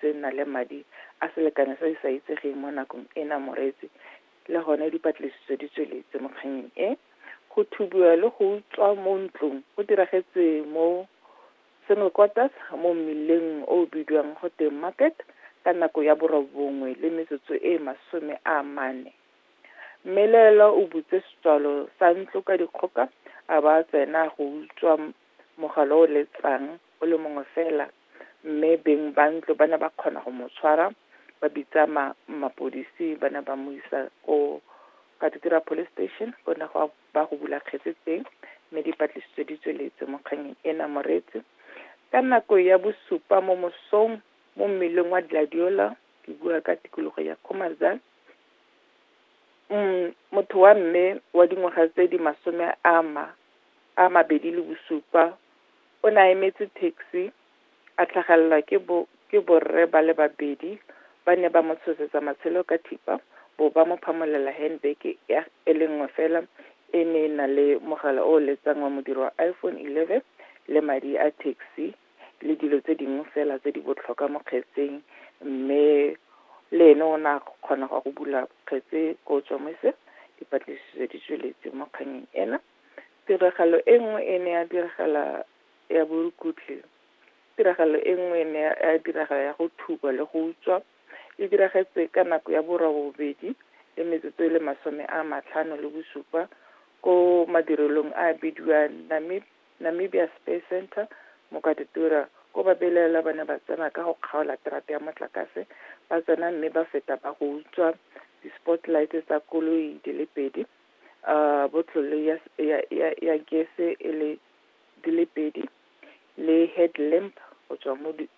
tse nna le madi a selekano se se sa itsegeng mo nakong ena moreetsi le gone dipatlisiso di tsweletse mo kganyeng e go thubiwa le go utswa mo ntlong go diragetse mo single quarters mo mmileng o o bidiwang go teng market ka nako ya borobongwe le metsotso e masome a mane mmelaelwa o butse setswalo sa ntlo ka dikgoka a ba tsena go utswa mogala o letsang o le mongwe fela mme beng ba ntlo ba ne ba kgona go mo tshwara ba bitsa ma mapodisi ba ne ba mo isa ko Katikira Police Station go ne go ba go bula kgetse teng mme dipatlisiso di tsweletse mo kganyeng ena Moreetsi ka nako ya bosupa mo mosong mo mmeleng wa Gladiola ke bua ka tikologo ya Khomazan mm motho wa mme wa dingwaga tse di masome a ma a mabedi le bosupa O ne a emetse taxi, a tlhagelelwa ke bo, ke borre ba le babedi, ba ne ba mo tshosetsa matshelo ka thipa, bo ba mo phamolela handbag ya, e le nngwe fela, e ne e na le mogala o o letsang wa modiro wa iPhone 11, le madi a taxi, le dilo tse dingwe fela tse di botlhokwa mo kgetseng, mme le ene o ne a kgona go ya go bula kgetse ko Tshomise, dipatlisiso di tsweletse mo kgannyeng ena. Tiragalo e nngwe e ne ya diragala ya borukutlhi, tiragalo e nngwe e ne ya diragala ya go thuba le go utswa, e diragetse ka nako ya borobobedi le metsotso e le masome a matlhano le bosupa ko madirelong a bidiwa Namib, Namibia Space Centre, Mokatitura, ko babelaelwa ba ne ba tsena ka go kgaola terata ya motlakase, ba tsena mme ba feta ba go utswa di-spotlight tsa koloi di le pedi a botlole ya, ya, ya, ya gese e le di le pedi le headlamp go tswa mo di,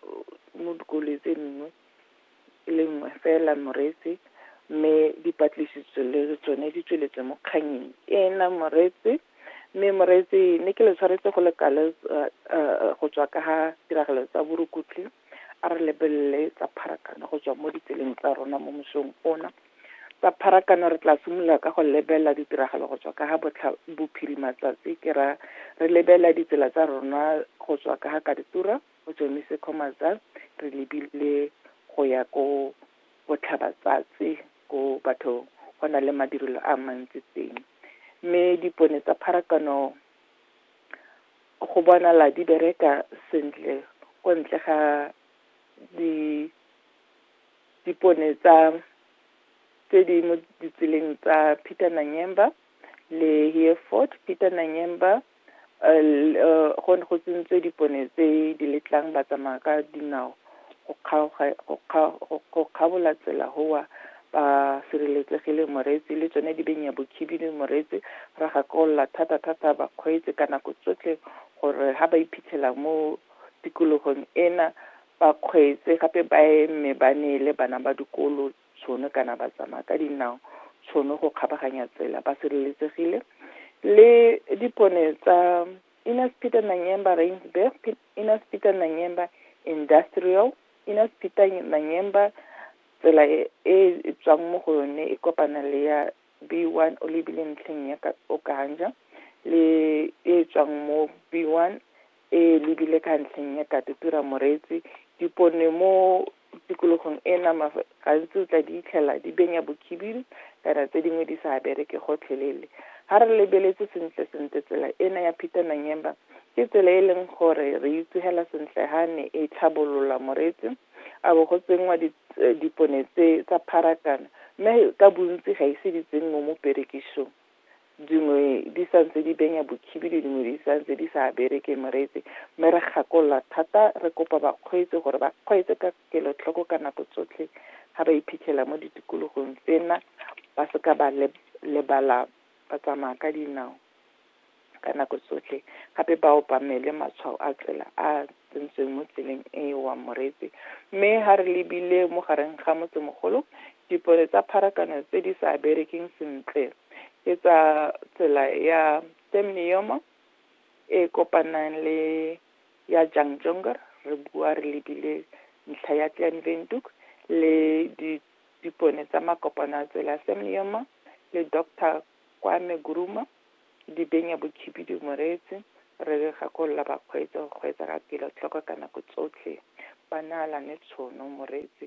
mo dikoloi tse dingwe e le nngwe fela moreetsi mme dipatlisiso le tsone di tsweletse mo kganyeng ena moreetsi mme moreetsi ne ke le tshwaretse go lekale go tswa ka ga tiragalo tsa borukutlhi a re lebelele tsa pharakano go tswa mo ditseleng tsa rona mo mosong ona Tsa pharakano re tla simolola ka go lebelela ditiragalo go tswa ka ga botlha bophirima tsatsi ke ra re lebelela ditsela tsa rona go tswa ka ga Kaditura go tswemise Khomatsa re lebile go ya ko botlhaba tsatsi ko batho go na le madirelo a mantsi teng mme dipone tsa pharakano go bonala di bereka sentle ko ntle ga di dipone tsa tse di mo ditseleng tsa Peter Nanyemba le Hereford Peter Nanyemba go ne go tsentswe dipone tse di letlang ba tsamaya ka dinao go kgaoga go kgabola tsela gowa ba sireletsegile moreetsi le tsone di benya bokhibidu moreetsi ra gakolola thata thata bakgweetsi ka nako tsotlhe gore ga ba iphitlhela mo tikologong ena ba kgweetse gape ba eme ba neele bana ba dikolo tshono kana ba tsamaya ka dinao tshono go kgabaganya tsela ba sireletsegile le dipone tsa Innes Peter Nanyemba Rainsburg, Innes Peter Nanyemba Industrial, Innes Peter Nanyemba tsela e e tswang mo go yone e kopana le ya B1 o lebile ntlheng ya Okanja le e tswang mo B1 e lebile ka ntlheng ya Katutura Moreetsi. Dipone mo tikologong e nama gantsi o tla di itlhela di benya bokhibidu kana tse dingwe di sa bereke gotlhelele ga re lebeletse sentle sentle tsela ena ya peter nanyemba ke tsela e leng gore re itsogela sentle ga ne e tlhabolola moreetsi a bo go tsenngwa eh, dipone tse tsa pharakano mme ka bontsi ga ise di tsenngwe mo perekisong dingwe di sa ntse di benya bokhibidu dingwe di sa ntse di sa bereke moreetsi mme re gakolola thata re kopa bakgweetsi gore ba kgweetse ka kelotlhoko ka nako tsotlhe ga ba iphitlhela mo ditikologong tsena ba seka ba lebala ba tsamaya ka dinao ka nako tsotlhe gape ba obamele matshwao a tsela a tsentsweng mo tseleng e e wa Moretse. Mme ha re lebile mo gareng ga motsemogolo, dipone tsa pharakano tse di sa berekeng sentle ke tsa tsela ya Temnium e kopanang le ya Jangjongar, re bua re lebile ntlha ya Kleinwindhoek le di dipone tsa makopano a tsela Semnium le Doctor Kwame Guruma Di benya bokhibidu moreetsi, re gakolola bakgweetsi go kgweetsa ka kelotlhoko ka nako tsotlhe, ba naalane tshono moreetsi.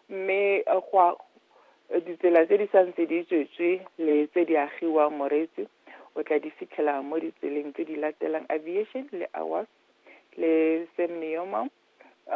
Mme go a ditsela tse di santse di tswetswe le tse di agiwang moreetsi o tla di fitlhela mo ditseleng tse di latelang aviation le awas le semneomam